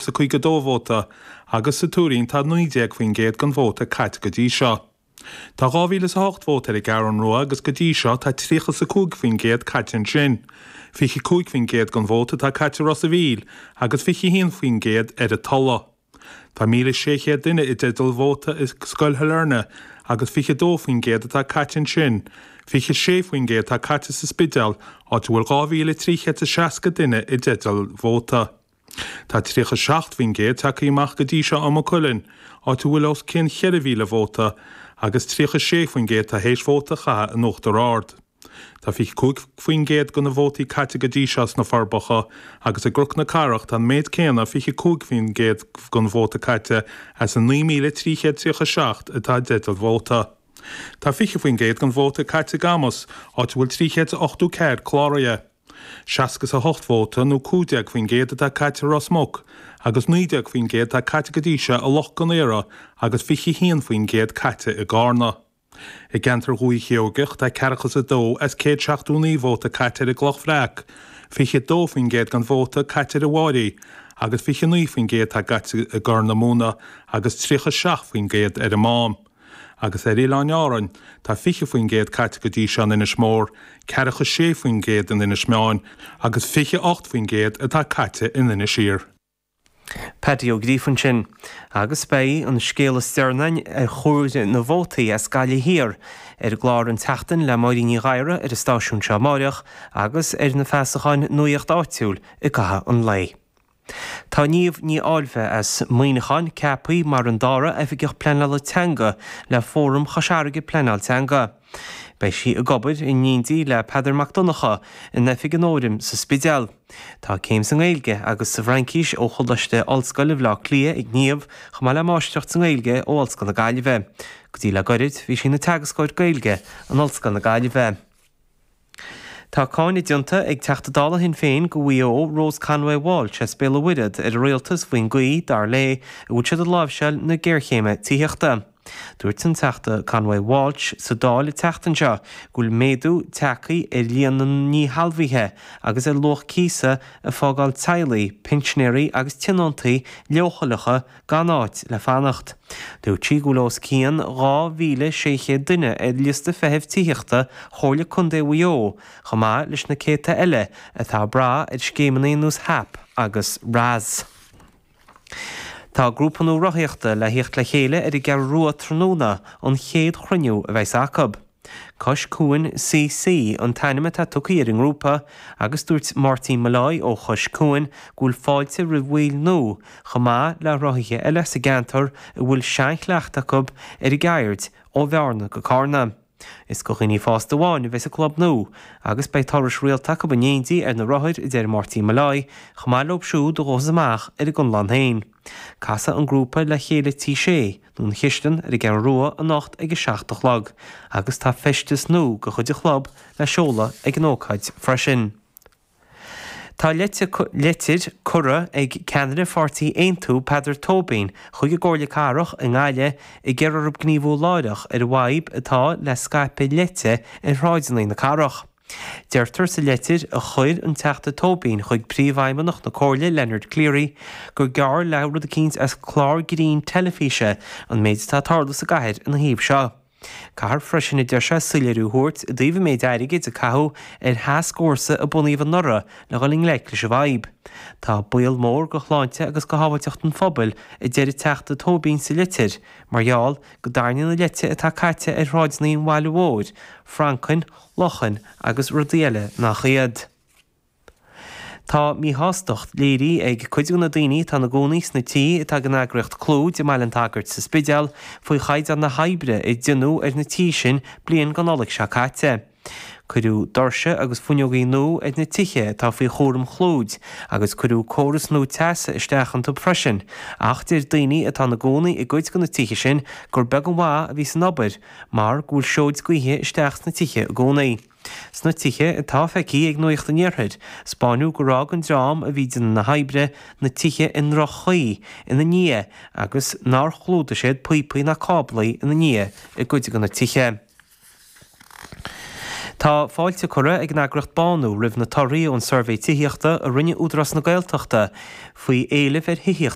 sa 52 vóta agus sa Tuairín tá 19% den vóta caite go dtí seo. Tá dhá mhíle is a hocht vóta ar an gCeathrú Rua agus go dtí seo tá tríocha is a cúig faoin gcéad caite ansin. 25% den vóta atá caite i Ros a' Mhíl agus 21% ar an Tuladh. Tá míle is sé chéad duine i dteideal vóta i Scoil Shailearna agus 22% atá caite ansin. 26% atá caite sa Spidéal, áit a bhfuil dhá mhíle trí chéad is seasca duine i dteideal vóta. Tá 37% tagtha amach go dtí seo i Maigh Cuilinn, áit a bhfuil os cionn 4,000 vóta, agus 36% atá théis vóta a chaitheamh in Uachtar Ard. Tá 25% de na vótaí caite go dtí seo sna Forbacha, agus i gCnoc na Cathrach tá an méid céanna, 25% den vóta caite as an 9,337 atá i dteideal vóta. Tá 20% den vóta caite i gCamus, áit a bhfuil 384 cláraithe. Seasca is a hocht vóta, nó 15%, atá caite i Ros Muc, agus 19% atá caite go dtí seo i Loch Con Aortha agus 21% caite i gCarna. I gceantar Dhúiche Sheoigeach, tá ceathracha is a dó as céad seachtó naoi vóta caite ar an gCloch Bhreac, 22% den vóta caite ar an bhFairche, agus 29% atá caite i gCorr na Móna agus 37% ar an Mám. Agus ar Oileáin Árainn, tá 20% caite go dtí seo in Inis Mór, ceathracha is sé faoin gcéad in Inis Meáin, agus 28% atá caite in Inis Oírr. Paddy Ó Gríofainn sin. Agus beidh an scéal is deireanaí ar chomhaireamh na vótaí as Gaillimh Thiar ar an gclár An tSeachtain le Máirín Ní Ghadhra ar an stáisiún seo amáireach, agus ar na feasacháin Nuacht Áitiúil i gcaitheamh an lae. Tá Niamh Ní Fháilbhe as Muineachán ceaptha mar an dara Oifigeach Pleanála Teanga le Fóram Chois Fharraige Pleanáil Teanga. Beidh sí ag obair in éindí le Peadar Mac Donncha in Oifig an Fhóraim sa Spidéal. Tá céim sa nGaeilge agus sa bhFraincis ó Choláiste Ollscoile Bhleá Cliath ag Niamh chomh maith le Máistreacht sa nGaeilge ó Ollscoil na Gaillimhe. Go dtí le goirid bhí sí ina Teagascóir Gaeilge in Ollscoil na Gaillimhe. Tá cáineadh déanta ag Teachta Dála Shinn Féin do Mhaigh Eo, Rose Conway-Walsh as Béal an Mhuirthead, ar an Rialtas faoin gcaoi, dar léi, a bhfuil siad ag láimhseáil na géarchéime tithíochta. Dúirt an Teachta Conway-Walsh sa Dáil an tseachtain seo go bhfuil méadú tagtha ar líon na ndíshealbhaithe agus ar luach cíosa ag fágáil teaghlaigh, pinsinéirí agus tionóntaí leochaileacha gan áit le fanacht. Dúirt sí go bhfuil os cionn 2,600 duine ar liosta feithimh tithíochta Chomhairle Contae Mhaigh Eo, chomh maith leis na céadta eile atá ag brath ar scéimeanna ar nós HAP agus RAS. Tá grúpa nua rothaíochta le thíocht le chéile ar an gCeathrú Rua tráthnóna, an chéad chruinniú a bheas acu. Cois Cuain CC an t-ainm atá tugtha ar an ngrúpa agus dúirt Máirtín Molloy ó Chois Cuain go bhfuil fáilte roimh bhaill nua, chomh maith le rothaithe eile sa gceantar a bhfuil seanchleachtadh acu ar an gceird, ó Bhearna go Carna. Is do dhaoine fásta amháin a bheas an club nua agus beidh turais rialta acu in éindí ar na rothair a deir Máirtín Molloy, chomh maith leo siúd a ghabhfas amach ar a gconlán féin. Casfaidh an grúpa le chéile Tí Shé, nó An Chistin ar an gCeathrú Rua anocht ag a seacht a chlog agus tá feisteas nua de chuid an chlub le seoladh ag an ócáid freisin. Tá leitir curtha ag ceannaire pháirtí Aontú, Peadar Tóibín, chuig an gComhairle Cathrach i nGaillimh ag iarraidh orthu gníomhú láithreach ar an bhfadhb atá le scaipeadh leite ar shráideanna na cathrach. Deirtear sa litir a chuir an Teachta Tóibín chuig Príomhfheidhmeannach na Comhairle, Leonard Cleary, gur geall le rud eicínt as clár grinn teilifíse an méid atá ag tarlú sa gcathair ina thaobh seo. Caithfear freisin, a deir sé, soiléiriú a thabhairt i dtaobh an méid airgid a caitheadh ar thascfhórsa a bunaíodh anuraidh le dhul i ngleic leis an bhfadhb. Tá baol mór do shláinte agus do shábháilteacht an phobail, a deir an Teachta Tóibín sa litir, mar gheall go dtarraingíonn an leite atá caite ar shráideanna an bhaile mhóir, francaigh, luchain agus rudaí eile nach iad. Tá míshástacht léirithe ag cuid de na daoine atá ina gcónaí sna tithe atá ag an eagraíocht Clúid i mBaile an tSagairt sa Spidéal faoi chaighdeán na hoibre a deineadh ar na tithe sin bliain go Nollaig seo caite. Cuireadh doirse agus fuinneogaí nua ar na tithe atá faoi chúram Chlúid agus cuireadh córas nua teasa isteach iontu freisin ach deir daoine atá ina gcónaí i gcuid de na tithe sin gur beag an mhaith a bhí san obair mar go bhfuil seoid gaoithe isteach sna tithe i gcónaí. Sna tithe atá feicthe ag Nuacht an Iarthair, 'spáineadh gur fhág an dream a bhí déanamh na hoibre na tithe i ndroch-chaoi ina ndiaidh agus nár chlúdaigh siad píopaí ná cáblaí ina ndiaidh i gcuid de na tithe. Tá fáilte curtha ag an eagraíocht Bánú roimh na torthaí ón suirbhé tithíochta a rinne Údarás na Gaeltachta faoi éileamh ar thithíocht